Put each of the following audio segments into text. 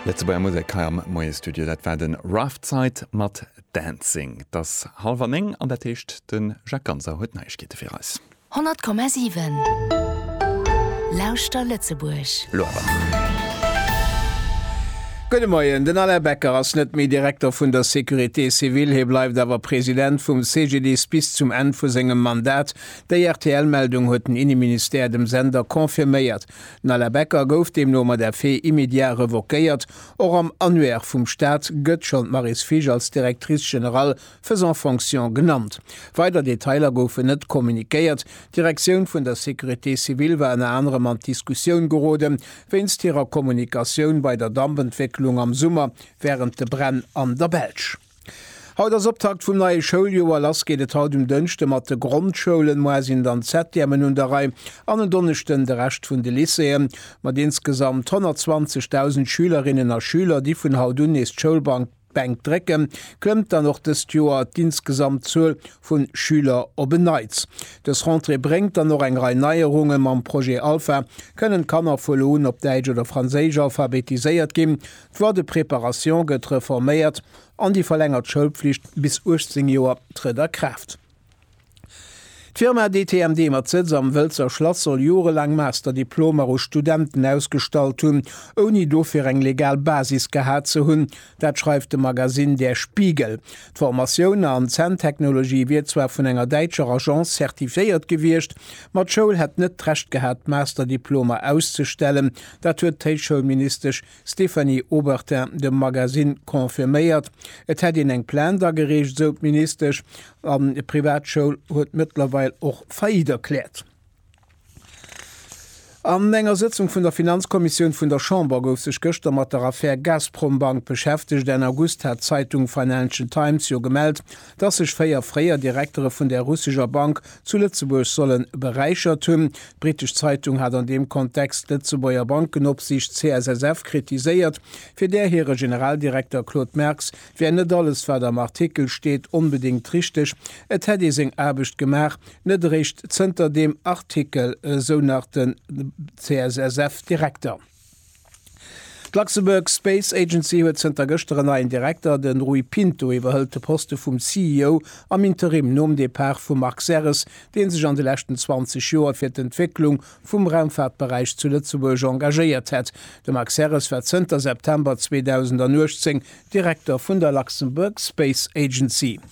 Lëtzebuerger Musek hei am Moie-Studio. Dat war de Roughtside mat Dancing. Et ass hallwer néng an dat heescht, de Jacques Ganser huet Neiegkeete fir eis. 100,7 Lauschter Lëtzebuerg! Elo awer. Gudde Moien. Den Alain Becker ass net méi Direkter vun der Sécurité civile. Hie bleift awer President vum CGDIS bis zum Enn vu sengem Mandat. Déi RTL-Meldung huet den Inneministère dem Sender confirméiert. D'Nalla Becker gouf deemno mat effet immédiat revoquéiert. Och am Annuaire vum Staat gëtt schonn d'Maryse Fisch als Directrice générale faisant fonction genannt. Weider Detailer goufen net communiquéiert. D'Direktioun vun der Sécurité civile war ënner anerem an d'Diskussioun gerode wéinst hirer Kommunikatioun bei der Dampentwécklung am Summer wärend de Bränn an der Belsch. Haut ass Optakt vum neie Schouljoer. Lass geet et haut um Dënschde mat de Grondschoulen. Moar sinn dann d'Septièmen un der Rei an en Donneschden de Rescht vun de Lycéeën. Mat insgesamt 120.000 Schülerinnen a Schüler, déi vun haut un nees d'Schoulbank Bänk drécken, klëmmt dann och dëst Joer d'insgesamt Zuel vu Schüler op en Neits. Dës Rentrée bréngt dann och eng Rei Neierungen. Mam Projet Alpha kënnen d'Kanner vu lo un op Däitsch oder Franséisch alphabetiséiert ginn. D'Loi de préparation gëtt reforméiert an déi verlängert Schoulpflicht bis 18 Joer trëtt a Kraaft. D'Firma DTMD mat Sëtz am Wëlzer Schlass soll jorelaang Masterdiplomer u Studenten ausgestallt hunn, ouni dofir eng legal Basis gehat ze hunn. Dat schreift de Magasinn Der Spiegel. D'Formatioun an Zänntechnologie wier zwar vun enger däitscher Agence zertifiéiert gewiescht, ma d'Schoul hätt net d'Recht gehat, d'Masterdiplomer auszestellen. Dat huet d'Héichschoulministesch Stéphanie Obertin dem Magazine confirméiert, et hätt een eng Plainte agereecht, esou d'Ministesch, an d'Privatschoul huet mëttlerweil och Faillite erkläert. An enger Sëtzung vun der Finanzkommissioun vun der Chamber gouf sech gëschter mat der Affär Gazprom-Bank beschäftegt. Enn August hat d'Zeitung Financial Times jo gemellt, dass sech véier fréier Direktere vun där russescher Bank zu Lëtzebuerg solle beräichert hunn. D'britesch Zeitung hat an deem Kontext d'Lëtzebuerger Bankenopsiicht, CSSF, kritiséiert, fir där hire Generaldirekter Claude Merx wär net alles, wat am Artikel steet, onbedéngt richteg, et hätt ee seng Aarbecht gemaach. Net eréischt zënter deem Artikel, esou nach de CSSF-Direkter. D'Luxembourg Space Agency huet zënter gëschter en neien Direkter, de Rui Pinto iwwerhëlt de Poste vum CEO am Interim nom Depart vum Marc Serres, dee sech an de leschten 20 Joer fir d'Entwécklung vum Raumfaartberäich zu Lëtzebuerg engagéiert hätt. De Marc Serres war zënter September 2018 Direkter vun der Luxembourg Space Agency.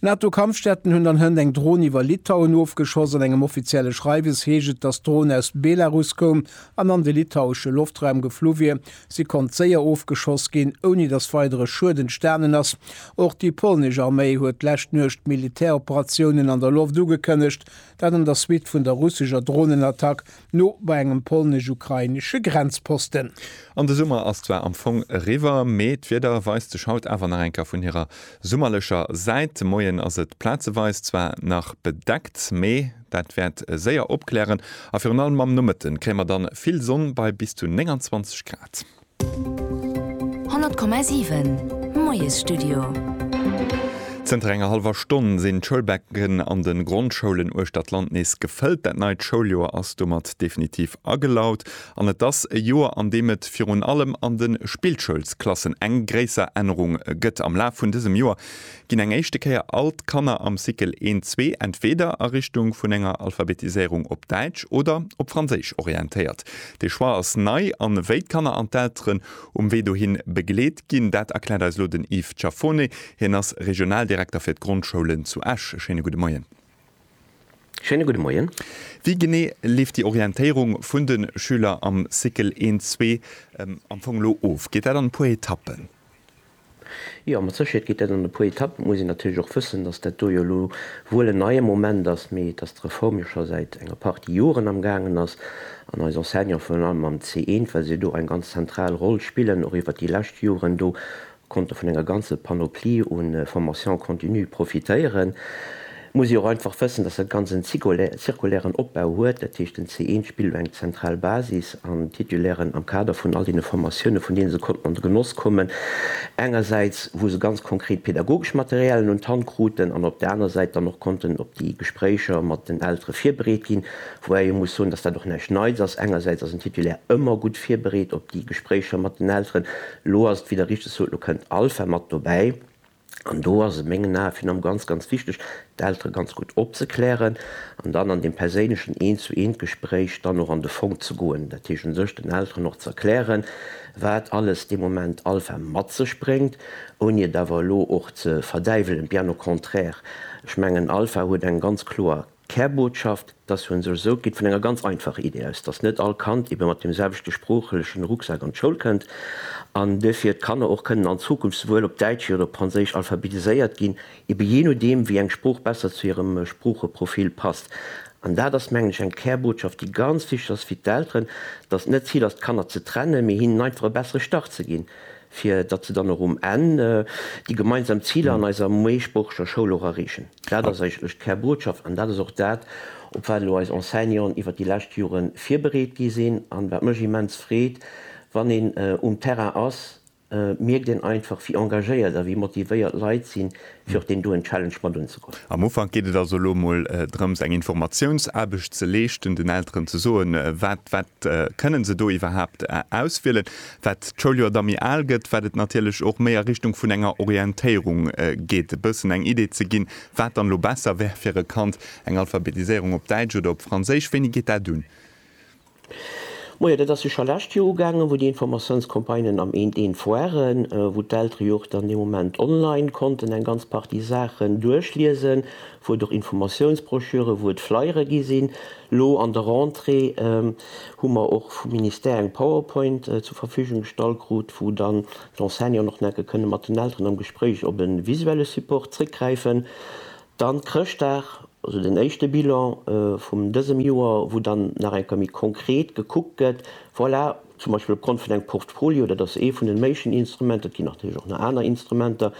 D'Nato-Kampfjetten hunn an Hënt eng Dron iwwer Litauen ofgeschoss. An engem offizielle Schreiwes heescht et, datt d'Dron aus Belarus koum an an de litauesche Loftraum geflu wier. Si konnt séier ofgeschoss ginn, ouni datt weidere Schued entstanen ass. Och déi polnesch Arméi huet d'lescht Nuecht Militäroperatiounen an der Loft ugekënnegt, dat an der Suite vun der russescher Dronenattack No bei engem polnesch-ukrainesche Grenzposten. An de Summer ass zwar am Fong eriwwer, mee d'Wieder weist sech haut awer nach eng Kéier vun hirer summerlecher Säit. De Moien ass et plazeweis zwar nach bedeckt, mee dat wäert séier opklären a virun allem am Nomëtte kréie mer dann vill Sonn bei bis zu 29 Grad. 100,7 Moiesstudio. Zënter enger hallwer Stonn sinn d'Schoulbecken an de Grondschoulen uechter d'Land nees gefëllt. Dat neit Schouljoer ass domat definitiv agelaut an et ass e Joer, an deem et virun allem an de Spillschoulsklassen eng gréisser Ännerung gëtt. Am Laf vun dësem Joer Ginn eng éischte Kéier all d'Kanner am Cycle 1, 2 entweder a Richtung vun enger Alphabetiséierung op Däitsch oder op Franséisch orientéiert. Dee Choix ass nei an wéi d'Kanner an d'Elteren um Wee dohin begleet ginn, dat erkläert eis elo den Yves Ciaffone. Hien ass Regionaldirekter fir d'Grondschoulen zu Esch. E schéine gudde Moien. Schéine gudde Moien. Wéi genee leeft déi Orientéierung vun de Schüler am Cycle 1, 2 am Fong elo of? Geet dat an e puer Etappen? Jo, mat Sécherheet geet dat an e puer Etappen. Et muss een natierlech och wëssen, datt dat do jo elo wuel en neie Moment ass, mee datt d'Reform jo scho säit enger Partie Joren am gaangen ass. An eis Enseignanten, virun allem am C1, well se do eng ganz zentral Roll spillen, och iwwert déi lescht Joren do konnte vun enger ganze Panoplie u Formation continue profitéieren. muss ee och einfach wëssen, dass dat Ganzt en zirkulären Opbau huet, dat heescht den C1 spillt elo eng zentral Basis an d'Titulairen am Kader vun all deene Formatiounen, vun deene se konnten an de Genoss kommen, engersäits wou se ganz konkret pedagogesch Materialien un d'Hand kruten an op där anerer Säit dann och konnten op déi Gespréicher mat den Eltere virbereet ginn, woubäi ee muss soen, dass dat och näischt Neits ass. Engersäits ass en Titulaire ëmmer gutt virbereet op déi Gespréicher mat den Elteren. Elo ass et, wéi Der richteg sot, elo kënnt Alpha mat dobäi. An do ass et mengen Ae virun allem ganz, ganz wichteg, d'Eltere ganz gutt opzeklären an dann an deem perséinlechen Eent-zu-eent-Gespréich dann och an de Fong ze goen. Dat heescht u sech den Elteren och ze erklären, wat alles dee Moment Alpha mat sech bréngt, ouni et awer elo och ze verdäiwelen, bien au contraire. Ech mengen, Alpha huet eng ganz kloer D'Kärbotschaft, dass hun sech esou, geet vun enger ganz einfacher Idee aus, dass net all Kand eben mat dem selwechte sproochelechen Rucksak an d'Schoul kënnt an duerfir d'Kanner och kënnen an Zukunft souwuel op Däitsch wéi oder op Franséisch alphabetiséiert ginn, eben jee nodeem, wéi eng Sprooch besser zu hirem Sproocheprofil passt. An dat ass, mengen ech, eng Kärbotschaft, déi ganz wichteg ass fir d'Elteren, dass et net d'Zil ass, d'Kanner ze trennen, mee hinnen einfach e bessere Start ze ginn. fir datt se dann och um Enn déi gemeinsam Ziler an eiser meeschsproocheger Schoul och erreechen. Dat ass eigentlech d'Kärbotschaft an dat ass och dat, op wat elo eis Enseignanten iwwert déi lescht Jore virbereet gi sinn an wat mech immens freet, wann een um Terrain ass, mierkt een einfach, wéi engagéiert a wéi motivéiert d'Leit sinn, fir och deen doen Challenge mat unzegoen. Am Ufank geet et also elo mol drëms eng Informatiounsaarbecht ze leeschten, den Elteren ze soen, wat wat kënnen se do iwwerhaapt auswielen. Wat d'Schouljoer da méi al gëtt, wat et natierlech och méi a Richtung vun enger Orientéierung geet, e bëssen eng Idee ze ginn, wat dann elo besser wär fir e Kand, eng Alphabetiséierung op Däitsch oder op Franséisch, wéini geet dat un? Moie, dat ass jo scho lescht Joer ugaangen, wou déi Informatiounscampagnen am eent eent waren, wou d'Eltere jo och dann dee Moment online konnten eng ganz Partie Saachen duerchliesen, wou et och Informatiounsbroschüre, wou et Flyere gi sinn. Elo an der Rentrée hu mer och vum Ministère eng Powerpoint zur Verfügung gestallt krut, wou dann d'Enseignanten och enke kënne mat den Elteren am Gespréich op e visuelle Support zréckgräifen. Dann Chrëschtdag, also den éischte Bilan vum dësem Joer, wou dann nach eng Kéier méi konkret gekuckt gëtt, voilà, zum Beispill op Grond vun engem Portfolio, dat ass ee vun den méiglichen Instrumenten, et ginn natierlech och nach aner Instrumenter,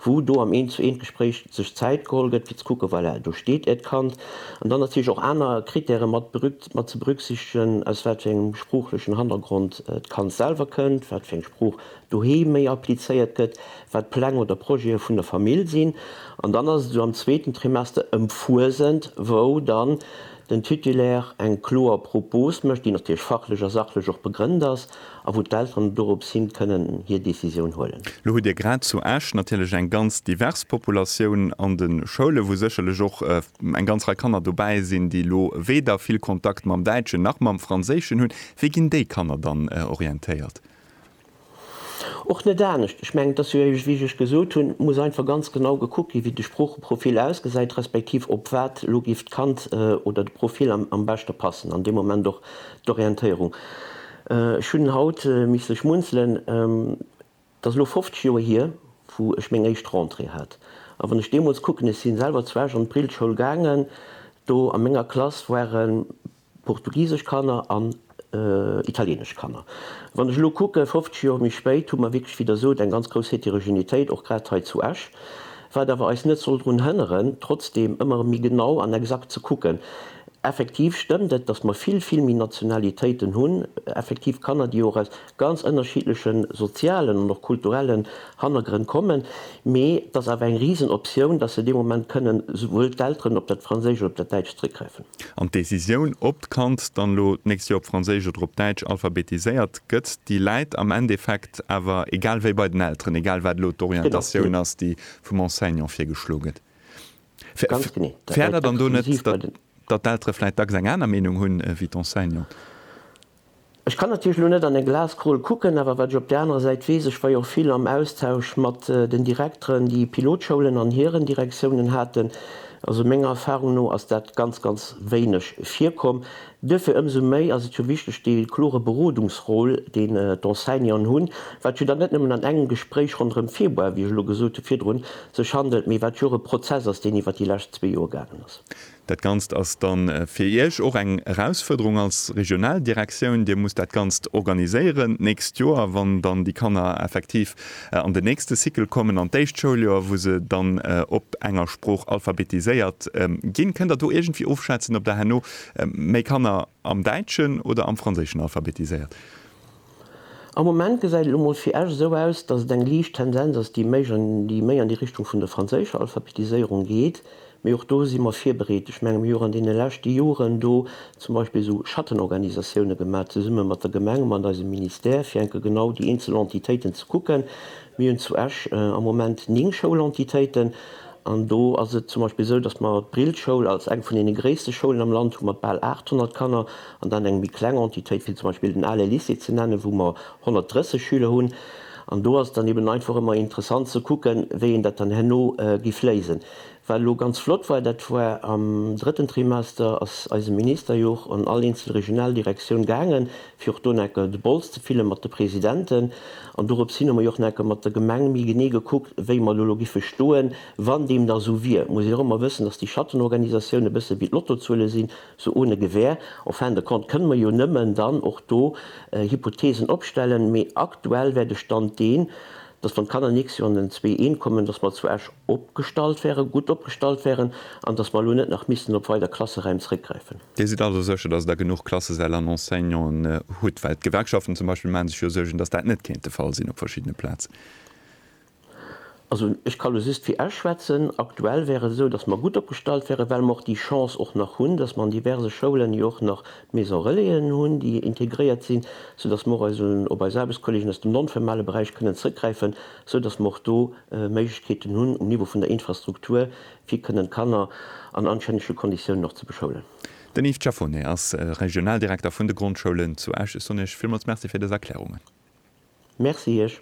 wou do am Eent-zu-eent-Gespréich sech Zäit geholl gëtt, fir ze kucken, voilà, do steet Äert Kand. An dann natierlech och aner Krittäre mat mat ze berücksichtegen, aus wat fir engem sproochlechen Hannergrond d'Kand selwer kënnt, wat fir eng Sprooch doheem méi applizéiert gëtt, wat Pläng oder Projete vun der Famill sinn, an dann ass et esou am zweeten Trimester ëm Fuesent, wou dann den Titulaire eng kloer Propos mécht, déi natierlech fachlech a sachlech och begrënnt ass a wou d'Elteren dorops hin kënnen hir Décisioun huelen. Lo hutt Dir grad zu Esch natierlech eng ganz divers Populatioun an de Schoulen, wou sécherlech och eng ganz Rei Kanner dobäi sinn, déi lo weder vill Kontakt mam Däitschen nach mam Franséischen hunn. Wéi ginn déi Kanner dann orientéiert? Och net anescht. Ech mengen, et ass jo éiweg, wéi ech lech gesot hunn, et muss einfach ganz genau gekuckt ginn, wéi de Sproocheprofil ausgesäit, respektiv op wat elo géif d'Kand oder de Profil am beschte passen an deem Moment, och d'Orientéierung. Ech hunn haut misste schmunzelen, et ass elo 50 Joer hier, wou ech meng éischt Rentrée hat. A wann ech deemools kucken, ech si selwer zu Esch an d'Brillschoul gaangen, do a menger Klass ware Portugisesch Kanner an italienesch Kanner. Wann ech elo kucken, 50 Joer méi spéit, hu mer wierklech, wéi Der sot, eng ganz grouss Heterogenitéit, och grad hei zu Esch, wat awer eis net soll drun hënneren, trotzdeem ëmmer méi genau an exakt ze kucken. Effektiv stëmmt et, dass mer vill, vill méi Nationalitéiten hunn, effektiv Kanner, déi och aus ganz ënnerschiddleche sozialen an och kulturelle Hannergrënn kommen, mee et ass awer eng risen Optioun, dass se dee Moment kënnen esouwuel d'Elteren op dat Franséisch oder op dat Däitsch zréckgräifen. An d'Decisioun, ob d'Kand dann elo d'nächst Joer op Franséisch oder op Däitsch alphabetiséiert gëtt, déi läit am Endeffekt awer egal wéi bei den Elteren, egal wat elo d'Orientatioun ass, déi vum Enseignant virgeschlo gëtt. Fäert dat dann do net, datt d'Eltere vläicht dacks eng aner Meenung hunn ewéi d'Enseignante? Ech kann natierlech elo net an eng Glaskrol kucken, awer wat ech op där anerer Säit weess, ech war jo och vill am Austausch mat den Direkteren, déi Pilotschoulen an hiren Direktiounen haten, also menger Erfahrung no ass dat ganz, ganz wéineg virkomm. Duerfir ëmsou méi ass et jo wichteg, dee klore Berodungsrôle, deen d'Enseignanten hunn, wat jo dann net nëmmen an engem Gespréich ronderëm Februar, wéi ech elo gesot hu virdrun, sech handelt, mee wat jo och e Prozess ass, deen iwwert déi lescht zwee Joer gaangen ass. Dat Ganzt ass da fir Iech och eng Erausfuerderung als regional Direktioun. Dir musst dat Ganzt organiséieren d'nächst Joer, wann dann déi Kanner effektiv an den nächste Cycle kommen, an d'éischt Schouljoer, wou se dann op enger Sprooch alphabetiséiert ginn. Kënnt Der do iergendwéi ofschätzen, ob Der herno méi Kanner am däitschen oder am franséischen alphabetiséiert? Am Moment gesäit et emol fir Esch esou aus, datt et eng liicht Tendenz ass, déi méi an déi Richtung vun der franséischer Alphabetiséierung geet. Mee och do si mer virbereet. Ech menge mir hu an deene leschte Joren do zum Beispill esou Schattenorganisatioune gemaach zesumme mat der Gemeng, mat eisem Ministère, fir enke genau déi eenzel Entitéiten ze kucken. Mir hunn zu Esch am Moment 9 Schoulentitéiten an do ass et zum Beispill esou, datt mer d'Brill-Schoul als eng vun deene gréisste Schoulen am Land hu mat bal 800 Kanner. an dann eng méi kleng Entitéit wéi zum Beispill den ale Lycée ze nennen, wou mer 130 Schüler hunn. An do ass et dann eben einfach ëmmer interessant ze kucken, wéi een dat dann herno giff léisen. Wat elo ganz flott war, dat war am drëtten Trimester, ass eise Minister jo och an all eenzel Regionaldirektioun gaangen, fir och do naker de Bols ze fillen mat de Presidenten. An dorops hin hu mer jo och naker mat der Gemeng méi genee gekuckt, wéi mer do elo giffe stoen, wann deem da esou wier. Et muss een och ëmmer wëssen, dass déi Schattenorganisatioun e bësse wéi d'Lottozuele sinn, Sou ohne Gewähr, en fin de compte kënne mer jo nëmmen dann och do Hypothesen opstellen. Mee aktuell wär de Stand deen, dass wann d'Kanner d'nächst Joer an den zwee I kommen, dass mer zu Esch opgestallt wären, gutt opgestallt wären an dass mer elo net nach missten op weider Klasseräim zrëckgräifen. Dir sidd also sécher, dass Der genuch Klassesäll an Enseignanten hutt? Well d'Gewerkschaften zum Beispill maache sech jo Suergen, dass dat net kéint de Fall sinn op verschiddene Plazen. Also, ech ka lo just fir Esch schwätzen. Aktuell wär et esou, dass mer gutt opgestallt wären, well mer och déi Chance och nach hunn, dass mer an diverse Schoulen jo och nach Maison Relaisen hunn, déi integréiert sinn, soudass mer och eis un, op eis Aarbechtskolleegen aus dem non-famale Beräich kënnen zrëckgräifen, soudass mer och do Méiglechkeeten hunn um Niveau vun der Infrastruktur, fir kënnen d'Kanner an anstännege Konditiounen och ze beschoulen. Den Yves Ciafone ass Regionaldirekter vun de Grondschoulen zu Esch. Ech soen Iech villmools Merci fir dës Erklärungen. Merci Iech.